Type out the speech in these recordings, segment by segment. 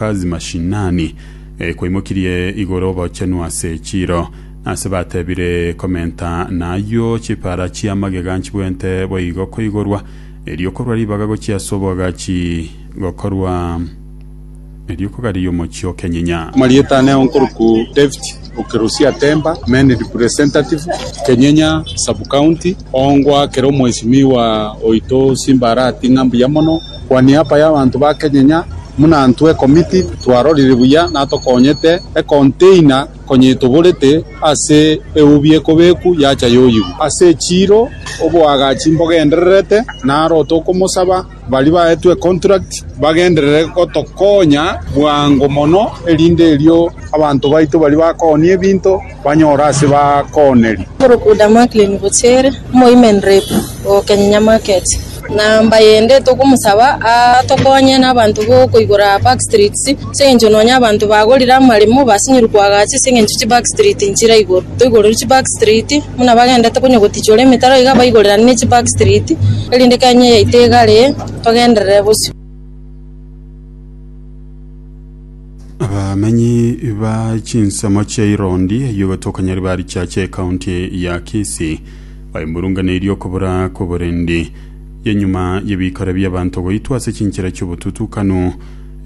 Kazi mashinani, kwaimokirie igoro obochenu ase echiro, ase batebire komenta na ayio chipara chia magega nchibwente boigo koigorwa, erio korwa ribaga gochia ase oboagachi gokorwa erio kogariria omochie o Kenyinya. Amarieta ane ao nkoruku David Okerusia Temba, Main Representative, Kenyinya Sub-County, Ongwa kera Omwesimiwa oito Simba Arati ng'a mbuya mono. Kwa niaba y'abanto ba kenyenya buna intwe ekomiti twarorire buya na tokonyete ekonteina konyetoborete ase eubi ekobeku yacha yoyigwa ase echiiro oboagachi mbogendererete naro otokomosaba baria baetwe econtract bagenderere gotokonya bwango mono erinde erio abanto baito baria bakooni ebinto banyore ase bakooneri. Korokwa Damaklini gochia ere, omoimerereku o Kenyinya Market. Namba yende tokomosaba atokonye nabanto bokoigora back streets ase eng'encho nonya abanto bagorire amaremo basinyirwe koagacha ase eng'encho chi back street nchire igoro. Toigorerwe chi back street buna bagendete konya gotichora emetaro iga baigorerane ne chi back street erinde Kenya yaito egare togenderere bosio. Abamenyi ba chinsemo chia Irondi eyio batokanyari ba richache ekaunti ya Kisii baimurunganeirie okobura kw'oborendi y'enyuma y'ebikore bi'abanto goitwa ase chinchera chi'obotutukanu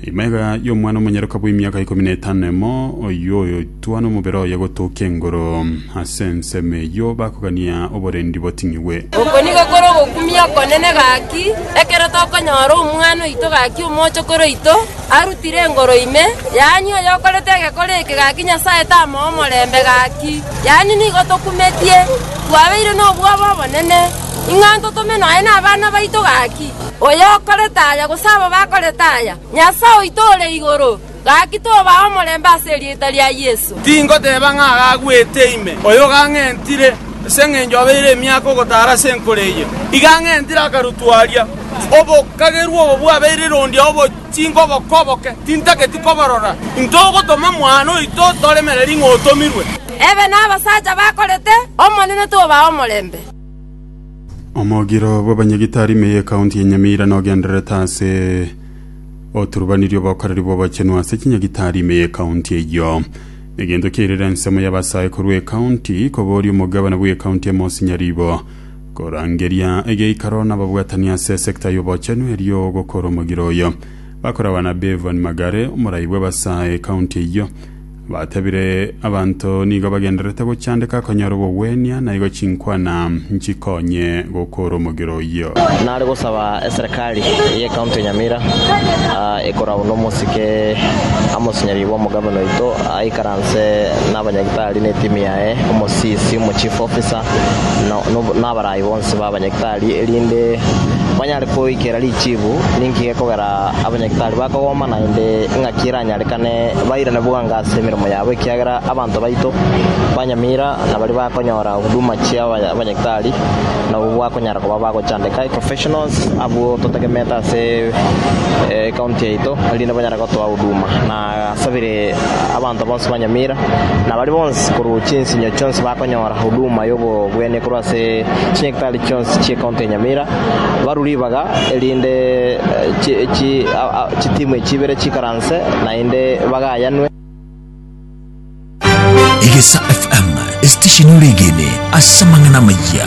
ime iga y'omwana omonyoroka bw'emiaka ikomi na etano emo oyio Twa nomobere oye gotokia engoro. Ase ensemo eyio bakogania oborendi boting'igwe. Oko nigo kore ogokumia okonene gaki, ekero tokonyora omwana oito gaki omochokoro oito, arutire engoro ime, yaani oyokorete egekore eke gaki Nyasae tamoe omorembe gaki. Yaani nigo tokumetie, twabeire nobwoba obonene, ing'a ntotome nonya nabana baito gaki. Oyokorete aya, gose aba bakorete aya, Nyasae oito ore igoro. Gaki tobaa omorembe ase erieta ria Yeso. Tingoteba ng'a agagwete ime, oyo gang'entire, ase engencho obeire emiaka ogotaara ase enkoro eye. Igang'entire akarutwa aria, obokagerwa obo bwabeire rondi ao bochinka oboko oboke, tintageti koborora. Intwe ogotoma mwana oito toremereri ng'a otomirwe. Ebe nabasacha bakorete, Omonene tobaa omorembe. Omogiro bw'abanyagitari ime y'ekaunti ya Nyamira nogendererete ase. Oturubanirie obokoreri bw'obochenu ase chinyagitari ime y'ekaunti eyio. Egento kiairera ensemo y'abasae korwa ekaunti, kobooria omogabana bw'ekaunti ime osinye ribo. Korangeria egeikaro n'ababwatani ase esekta y'obochenu erio ogokora omogiro oyo. Bakorabana Bevan Magare, omorai bw'abasae ekaunti eyio. Batebire abanto nigo bagendererete gochandeka konyara obogwenia, na igo chinkwana nchikonye gokora omogera oyio. Nare gosaba eserekari y'ecounty ya Nyamira ekorau nomosike Amos Nyaribo omogavana oito aikaranse nabanyagitari ne etimu yaye, omosisi, omochief officer na abarayi bonsi babanyagitari erinde banyare koikera richibu ninki gekogera. Abanyakitari bakogoma naende engaki eranyarekane bairane bwango ase emeremo yabo, ekiagera abanto baito banyamira nabaria bakonyora huduma chia abanyakitari nabwo bakonyara koba bagochandeka, professionals, abwo totegemeete ase ecounty yaito erinde banyare gotoa huduma. Agasabire abanto bonsi ba Nyamira, na baria bonsi korwa chinsinyo chionsi bakonyora huduma y'obogwenia korwa ase chinyagitari chionsi chi'ecounty ya Nyamira, barwe ribaga, erinde chitimu echi ibere chiikaranse naende bagayanwe. Egesa FM, esitesheni ore egene ase amang'ana amayia.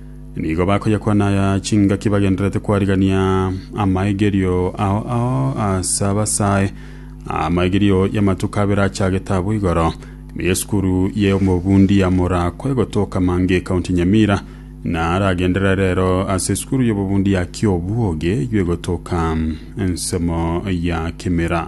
Nigo bakoyakwana aya chingaki bagendererete kwarigania amaigerio ao ao ase abasae, amaigerio y'amatuko abere achagete abwo igoro. Ime y'esukuru y'omobundi ya Morakwa egotoka Mange, County Nyamira, na aragenderere rero ase esukuru y'obobundi ya Kiobwogi eywo egotoka ensemo ya Kimira.